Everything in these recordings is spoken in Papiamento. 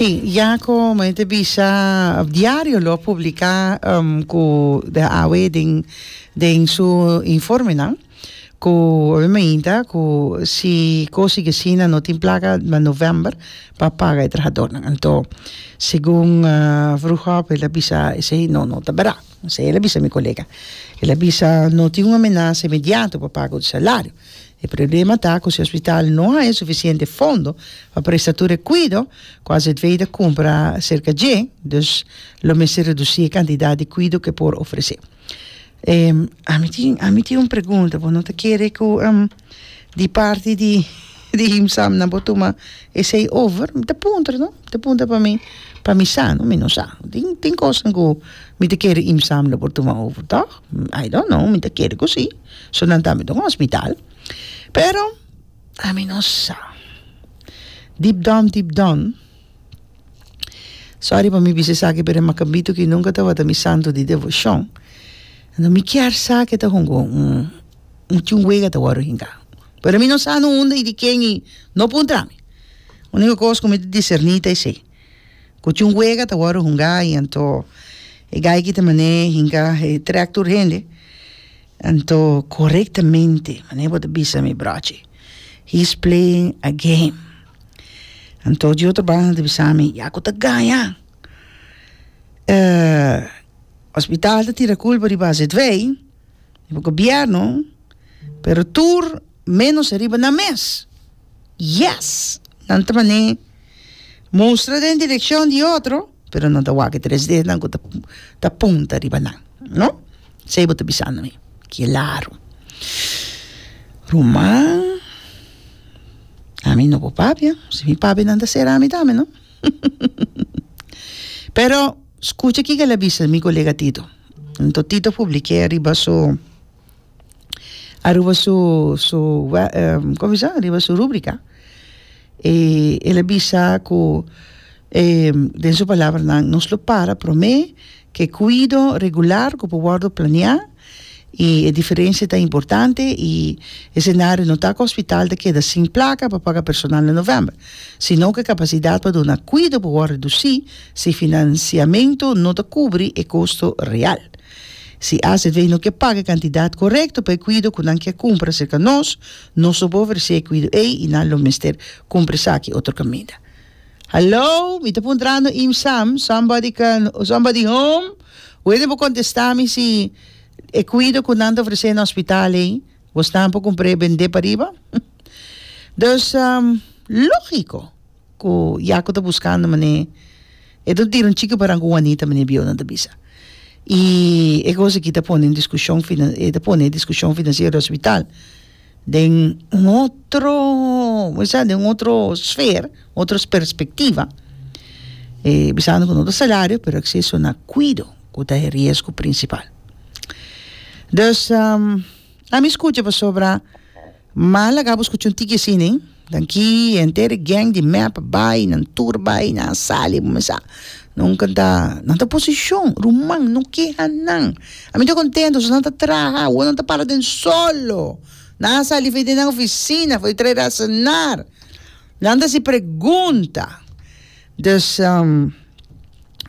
Sí, ya cu mei ta bisa diario lo a publica cu de awe den den su informenan cu awe meinta cu si cosi ki asina no tin placa na november pa paga e trahadornan anto segun Vroegop el a bisa esey no no ta bera esey el a bisa mi colega el a bisa no tin un amenasa inmediato pa pago di salario E problema ta cu si hospital no haya suficiente fondo pa presta tur e cuido cu AZVI ta cumpra cerca dje, dus lo mester reduci e cantidad di cuido cu e por ofrece. Ami tin ami tin un pregunta, bo no ta kere cu di parti di di Himsamna bo tuma esey over? Mi ta puntra no, mi ta puntra pa mi pa mi sa no, mi no sa, tin tin cosnan cu mi ta kere Himsamna por tuma over toch? I don't know, mi ta kere cu si. So nan tambe ta un hospital. Pero ami no sa. Deep down, deep down, sorry pa mi bisa esaki, pero e Macambito aki nunca tabata mi santo di devocion. Enton mi kier sa ke ta hunga un, un chunguega ta wòrdu hinca. Pero mi no sa no unda i di ken i no puntra mi. Unico cos cu mi ta discerni ta esei. Cu tin un wega ta wordo hunga y anto e gaiky ta mane hinca he track tur hende anto corectamente mane bo ta bisa mi brochi he's playing a game anto di otro banda ta bisa mi ya cu ta gaña hospital ta tira culpa riba azv riba gobierno pero tur menos ariba nan mes. Yes! Nan ta man'é mustra den direccion di otro, pero nan ta wak e tres dedonan ku ta ta punta riba nan, no? Esei bo ta bisando mi, kilaru. Ruman, ami no bo papia, si mi papia nan ta sera mi tambe, no? Pero, skucha kiko el a bisa mi kolega Tito. Anto Tito publik'é riba su. aruba su como se aruba su rubrica y el a bisa cu den su palabranan nos lo para prome ke cuido regular cu por wordo planea y e diferencia ta importante y escenario no ta cu hospital ta keda sin placa pa paga personal na november sino ke capacidad pa duna cuido por wor reduci si financiamento no ta cubri e costo real. Si ACV no ke paga e kantidat korekto pa e kuido ku nan ke kumpra serka nos, nos lo por ofresé e kuido ei i nan lo mester kumpra esaki otro kaminda. Hallo, mi ta puntrando im Sam, somebody can, somebody home? Wene por kontestá mi si e kuido ku nan ta ofresé na hospital ei bosnan por kumpr'é bend'é pariba? Dus, lógiko. ku Yaku ta buskando manera e ta tira un chiki paran ku Huanita manera biyonan ta bisa i e kos aki ta pone diskushon ta pone diskushon finansiero di hospital den un otro me bisa den un otro sfer otro perspectiva bisando ku no ta salario pero acceso na cuido ku ta e riesgo principal dus. A mi scucha pasobra ma laga bo scucha un tiki así nen tan ki enter e gang di mep bay nan tur bay nan a sali a cuminsa nunca ta nan ta oposicion ruman no keha nan a mi ta contento si nan ta traha awo nan ta para den solo nan a sali for den nan oficina for a traer a cenar nan ta haci pregunta. Dus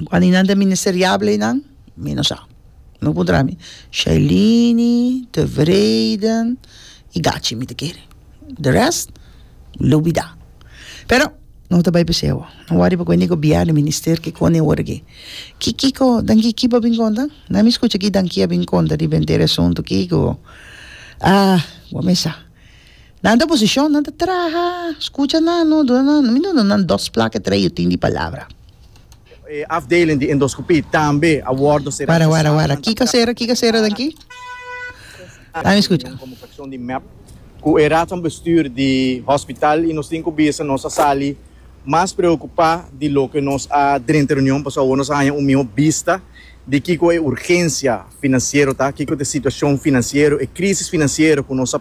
cualidadnan ministeriable nan mi no sa, no puntra mi, Shailini, Tevreden y Gachi mi ta kere, the rest lubida, pero no ta bay p'e seu, no worry p'e cu ene gobier di minister ki con e ora aki, Kikico danki kiba a bin conta, nan mi scucha ki danki a bin conta riba entero e asunto Kico, ah bo mesa. Nan ta posishon, nan ta traha. Skucha nan, no duna nan, mi no duna nan dòs plak e tres yutin di palabra. E afdeling di endoskopie tambe a wòrdu será Wara, wara, wara. Kiko a sera? Kiko a sera den aki? Lami skucha. Komunikashon di mep ku e Raad van Bestuur di hospital i nos tin ku bisa nos a sali mas preokupá di loke nos a drenta reunion pasobra awor nos a haña un mihó bista di kiko e urgensia finansiero ta, kiko ta e situashon finansiero, e krísis finansiero ku nos a.